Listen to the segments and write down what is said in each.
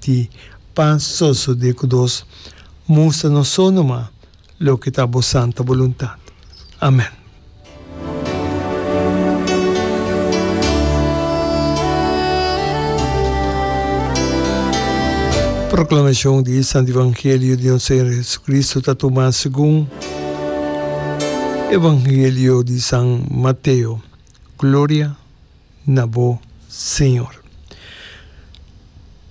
di pan soso di ku dos mustra nos so numa loke ta bo santa boluntat. Amen. Proklamashon di e Santu Evangelio di nos Señor Jesucristo ta tuma segun Evangelio di San Mateo. Gloria. na bo, Señor.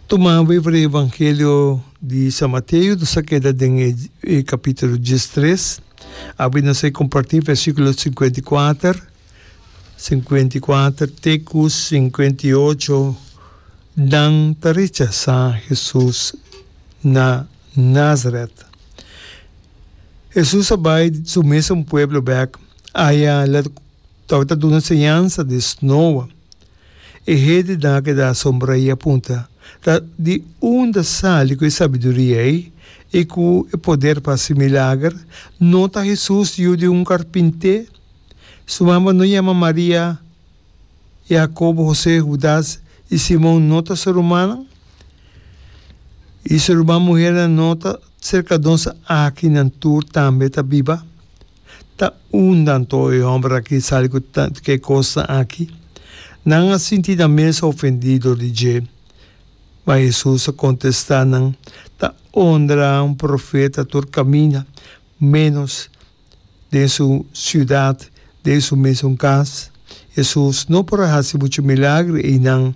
Tuma we for e Evangelio di San Mateo, nos a keda den e capítulo diestres, awe nos a comparti versiculo singenta i kuater, singenta i kuater te ku singenta i ocho, nan ta rechasá Hesus na Nazaret. Hesus a bai su mes un pueblo bek, aya lo. Tok ta duna señansa di Snowa, e hendenan a keda asombrá i a punta, Ta di unda sali ku e sabiduria ei i ku e poder pa hasi milager? No ta Hesus yu di un karpinté? Su mama no yama Maria, Yakobo, Hosé, Hudas i Simon no ta su rumannan? I su ruman muhernan no ta serka nos aki nan tur tambe ta biba? Ta unda anto e homber aki sali cu tant cu e cosnan aki? Nan a sinti nan mes ofendido di dje. Ma Jesus a contesta nan, Ta ondra un profeta tur camina, menos den su ciudad, den su mesun cas. Jesus no por a haci muchu milagre einan,